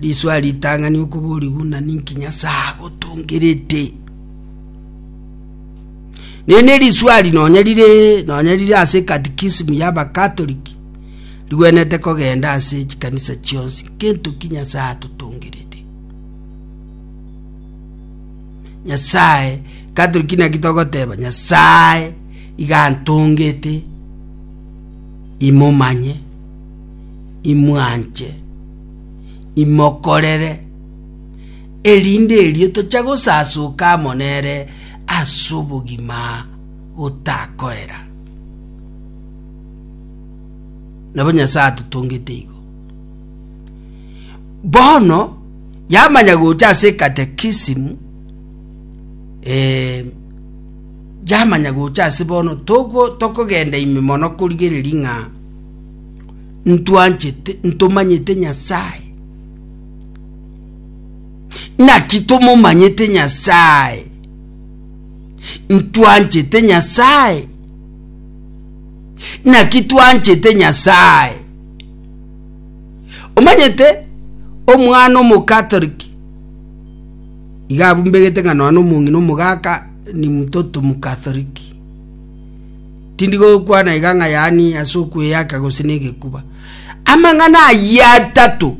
Risoa ritang'ani okoborigwa ng'a ninki Nyasae agotongerete. Nene risuari nonya rire nonya rire ase katikisimu ya bakatoliki rigwenete kogenda ase chikanisa chionsi kento ki nyasaye atotongerete nyasaye katoliki naki togoteba nyasaye igantongete imomanye imwanche imokorere, erinde erio toche gosasoka amo nere ase obogima botakoera. Nabo Nyasae atotongete igo. Bono yamanya gocha ase katekisimu eh, yamanya gocha ase bono togo tokogenda ime mono korigereria ng'a ntwanchete, ntomanyete Nyasaye. Naki tomomanyete Nyasaye, ntwanchete Nyasaye. Naki twanchete Nyasaye. Omanyete omwana omokatoliki iga abumbegete ng'a nonya omong'ina omogaka ni mtoto mkatholiki. Tindi gokwana iga ng'a yaani ase okweyaka gose negekuba. Amang'ana ayio atato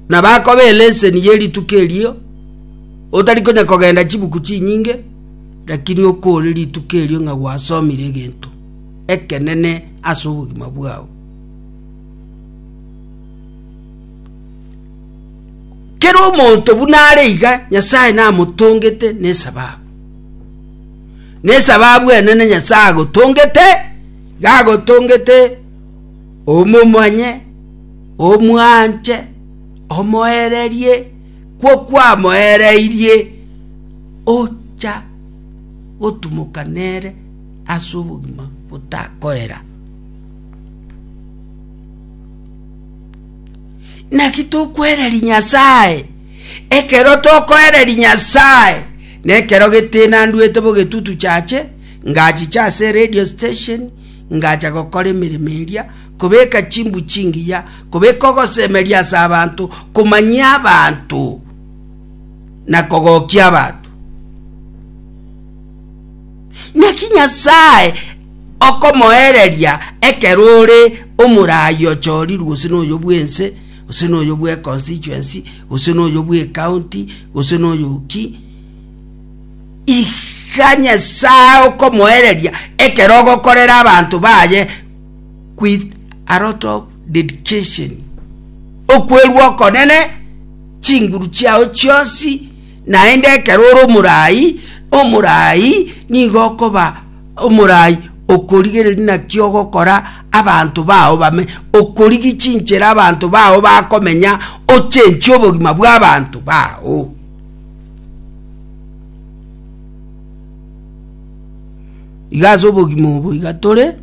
nabakoba eleseni ye rituko erio, otari konya kogenda chibuku chinyinge, lakini okore rituko erio ng'a gwasomire egento ekenene ase obogima bwao. Kera omonto buna are iga Nyasaye namotongete nesababu. nesababu enene Nyasae agotongete, gagotongete omomanye, omwanche, omoererie, kwo kwamoereirie ocha gotumoka nere ase obogima botakoera. Naki tokwereri Nyasae Ekero tokoereria Nyasaye nekero getenandwete bogetutu chache, ngachicha ase radio station, ngacha gokora emeremo eria, kobeka chimbu chingiya, kobeka ogosemeria ase abanto, komanyia abanto na kogokia abanto. Naki Nyasaye okomoereria ekero ore omoraai ochorirwe gose noyo bwense gose noyo bw'econstituency, gose noyo bw'ecounty, gose noyo ki, iga Nyasae okomoereria ekero ogokorera abanto baye with a lot of dedication okwerwa okonene chinguru chiao chionsi Naende ekero ore omoraai, omoraai nigo okoba omoraai okorigereria naki ogokora abanto bao bame, okorigi chinchera abanto bao bakomenya, ochenchie obogima bw'abanto bao. Iga ase obogima obo iga tore.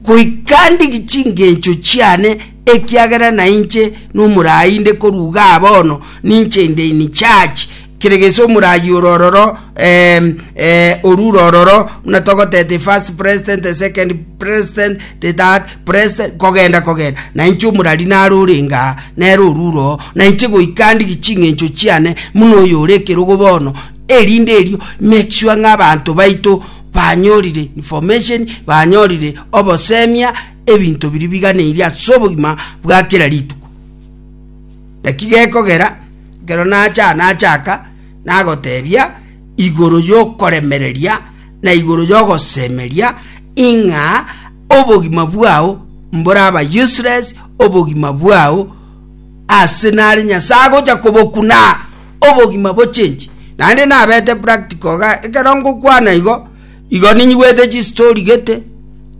goika ndige chingencho chiane, ekiagera nainche nomoraai inde korwa iga bono, ninche inde in charge kere gese omoraai ore ororo em, eh, oru ore ororo buna togoteba the first president, the second president, the third president, kogenda kogenda, nainche omorari nare ore ingaa, nere oru ore oo, nainche goika ndige ching'encho chiane buna oyo ore ekerogo bono, erinde erio make sure ng'a abanto baito. banyorire information, banyorire obosemia, ebinto biria biganeirie ase obogima bwa kera rituko. Naki gekogera ekero nacha nachaka nagotebia igoro yokoremereria na igoro yogosemeria ing'a obogima bwao mboraba useless, obogima bwao Ase nare Nyasae agocha kobokuna obogima bochenji. Naende nabete practical iga, ekero ngokwana igo, igo ninyigwete chistori gete,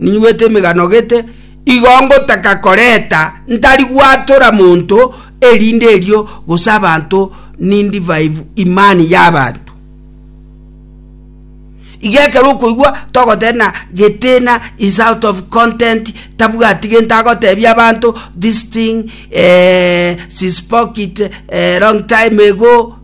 ninyigwete emegano gete, igo ngotaka koreta ntari gwatora monto erinde erio gose abanto nindivive imani y'abanto. Iga ekero okoigwa togoteba na Getina is out of content, tabwati gento agotebia abanto, this thing eh, she spoke it eh, long time ago.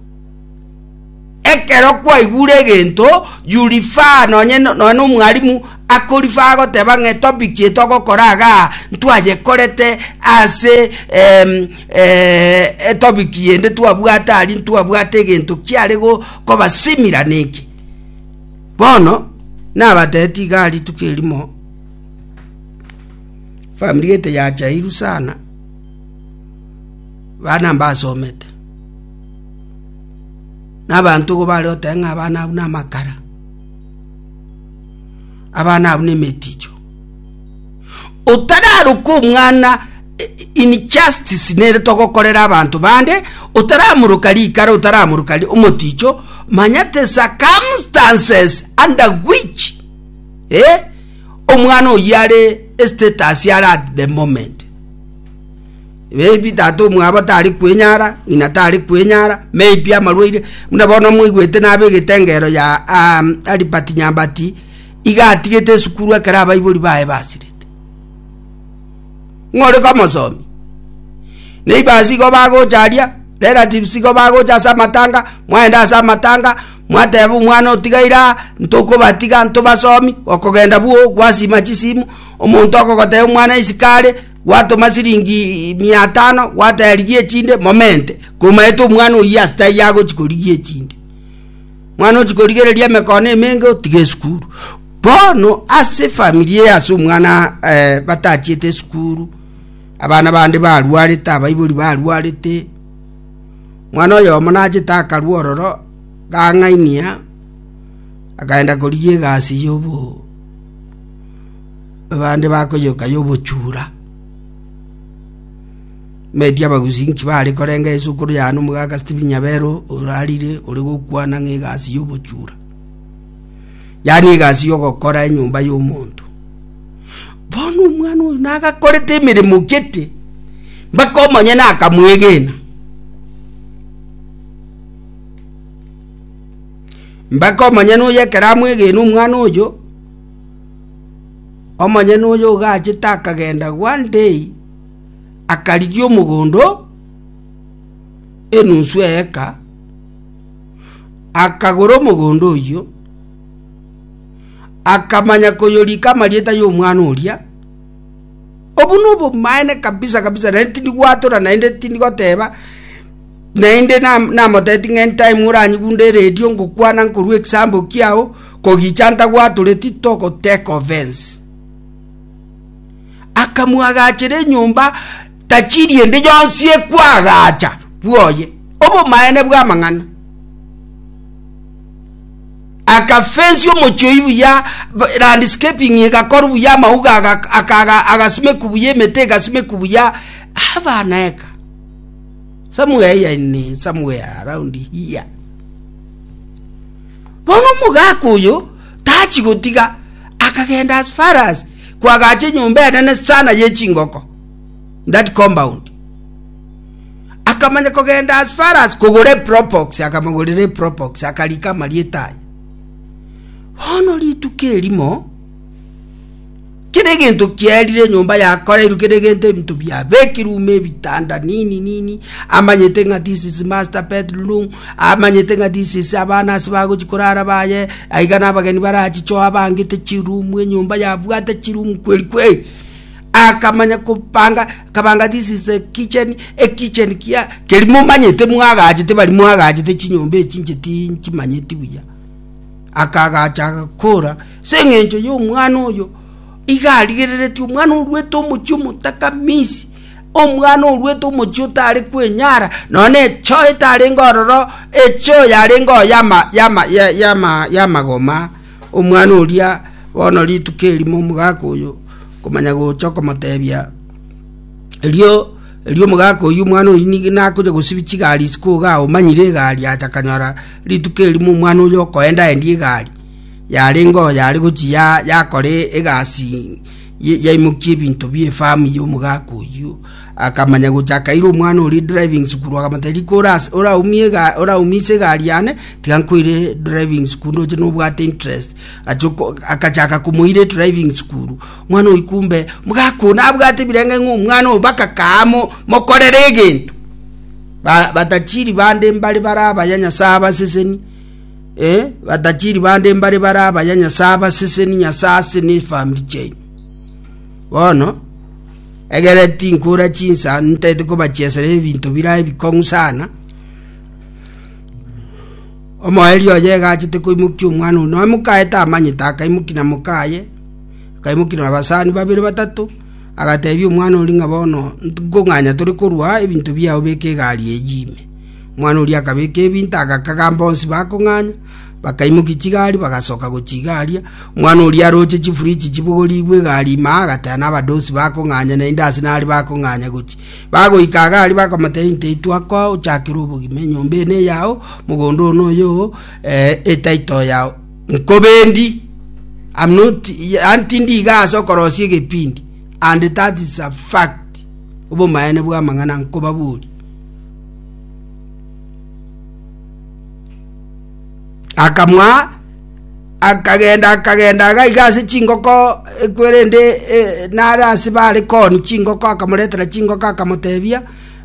Ekero kwaigure egento, you refer nonye no- nonye na omwalimu akorifer agoteba ng'a etopic eye togokora igaa, ntwayekorete ase em, Ee, etopiki yende twabwate aria ntwabwate egento kiare go- kobasimira neki. Bono, nabateeti igaa rituko erimo, famiri gete yachairu sana, bana mbasomete, na abanto igo bare goteba ng'a abana abwo namakara, abana abwo nemeticho. otararoka omwana injustice nere togokorera abanto bande otaramoroka rikara otaramoroka omoticho manya the circumstances under which eh, omwana oyo are status are at the moment maybe tata omwabo tari kwenyara ng'ina tari kwenyara maybe amarwaire buna bono mwaigwete nabe egetengero ya um, alibert nyambati iga atigete esukuru ekero abaibori baye basirete. Ng'ore komosomi, neighbors igo bagocha aria, relatives igo bagocha ase amatanga, mwaenda ase amatanga, mwateba omwana otigaire aa, ntokobatiga, ntobasomi, okogenda bwoo, gwasima chisimu, omonto okogotebia omwana isiko are, gwatoma siringi mia tano, gwateba rigia echinde, momente, komaete omwana oyio asita aywo agochi korigia echinde. Mwana ochia korigereria emekono emenge otiga esukuru. Bono ase famiri eye ase omwana eh, batachiete esukuru, abana bande barwarete, abaibori barwarete, mwana oyomo nachete akarwa ororo gang'ainia akaenda korigia egasi yobo abande bakoyoka yobochura Meti abagusi inki baare korenga Yeso igoro ya Yohana Omobatisanyi Stephen Nyabero orarire ore gokwana ng'a egasi y'obochura, yaani egasi y'ogokora enyomba y'omonto. Bono omwana oyo nagakorete emeremo gete mpaka omonyene akamwegena. Mpaka omonyene oyo ekero amwegene omwana oyo, omonyene oyo ogachete akagenda one day akarigia omogondo enunsu eeka, akagora omogondo oyio, akamanya koyorika amarieta y'omwana oria. Obwo nobomaene kabisa kabisa naende tindi gwatora naende tindi goteba naende namotebeti ng'a anytime oranyigunde eredio ngokwana nkorwa ekisambo kiao kogicha ntagwatoreti togoteka offence. akamoagachera enyomba tachiri ende yonsi ekwagacha bwoye obomaene bw'amang'ana. Akafensi omochie oyio buya, landscaping egakorwa buya, amauga agasimeku buya, emete egasimeku buya, abana eka. Somewhere here in somewhere around here. Bono omogaka oyo tachi gotiga akagenda as far as kwagacha enyomba enene sana ye chingoko that compound akamanya kogenda as far as kogora epropox akamogorera epropox akarika amarieta aye bono rituko erimo kera egento kierire enyomba yakoreirwe kera egento ebinto biabekirwe ume ebitanda nini nini amanyete ng'a this is master bedroom Amanyete ng'a disisi abana ase bagochia korara baye, aiga nabageni barachichoo abangete chirumu enyomba yabwate chirumu kweri kweri. Akamanya kopanga, akabanga this is a kitchen, a kitchen kia keri momanyete mwagachete bari mwagachete chinyomba echi inche tinchimanyeti buya. Akagacha agakora ase eng'encho y'omwana oyo iga arigereretie omwana orwete omochie omotakamisi Omwana oruete omochie otare kwenyara, nonya nechoo etarenge ororo, echoo yarenge oo y'amagoma, omwana oria bono rituko erimo omogaka oyo komanya gocha okomotebia, erio erio omogaka oyio omwana oyio nigo nakonya gosibia chigari isiko iga omanyire egari acha akanyora rituko erimo omwana oyo okoendaendia egari, yarenge oo yare gochia yakora egasi. yaimokia ebinto bi'efamu y'omogaka oyio, akamanya gocha akaira omwana oria edriving school, akamotebia, rika oras- oraumie ega- oraumise egari yane, tiga nkoire edriving school ndoche nobwate interest. Achia oko- akachaka komoira edriving school, omwana oyio kumbe, omogaka oyo nabwate ebirengererio ng'a omwana oyo mpaka kaaa mo- mokorere egento. Ba- batachiri bande mbare bare abaya Nyasae abaseseni. eh, batachiri bande mbare bare abaya Nyasae abaseseni Nyasae ase n'efamiri chiaino. Bono, egere tinkura chinsa ntaete kobachiesera ebinto birae bikong'u sana, omoerio oye egachete koimokia omwana ono noe mokaete amanyete akaimoki na mokaye akaimoki na abasani babere batato agatebia omwana ori ng'a bono nkong'anya tore korwa ebinto biao beka egari eyi ime Omwana oria akabeka ebinto, agakagamba onsi bakong'anya, bakaimokia chigari, bagasoka gochia iga aria. Omwana oria aroche chifuriji chibogorigwe egari ime aa, agateba nabadosi bakong'anya, naende ase nari bakong'anya gochia. Bagoika iga aria bakamotebia inta eye twakoa ochakere obogima, enyomba eye neyao, mogondo oyo noyo oo, etitle yao nkobendi, am not yaani tindi iga ase okorosia egepindi, and that is a fact, obomaene bw'amang'ana nkobaboria. Akamoa, akagenda akagenda agaiga ase chingoko ekwerende eh, nare ase bare koni chingoko akamoretera chingoko akamotebia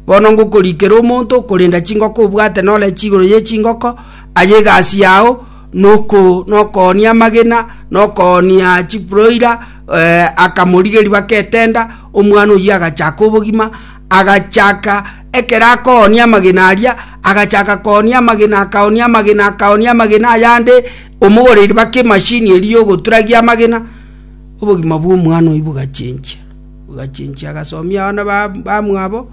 bono ngokorikera omonto okorenda chingoko obwate nore chigoro ye chingoko aye egasi yao noko nokoonia amagena nokoonia chiproira eh, akamorigeria baka etenda omwana oyio agachaka obogima agachaka, ekero akoonia amagena aria, agachaka koonia amagena, akaonia amagena, akaonia amagena ayande, omogoreiri baka emashini eria yogoturagia amagena, obogima bwa omwana oyio bogachenchia, bogachenchia agasomia abana ba- bamwabo,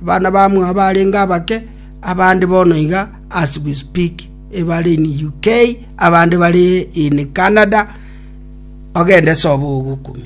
abana bamwabo arenge abake, abande bono iga as we speak ebare in UK, abande bare in Canada, ogende sobe ogokumia.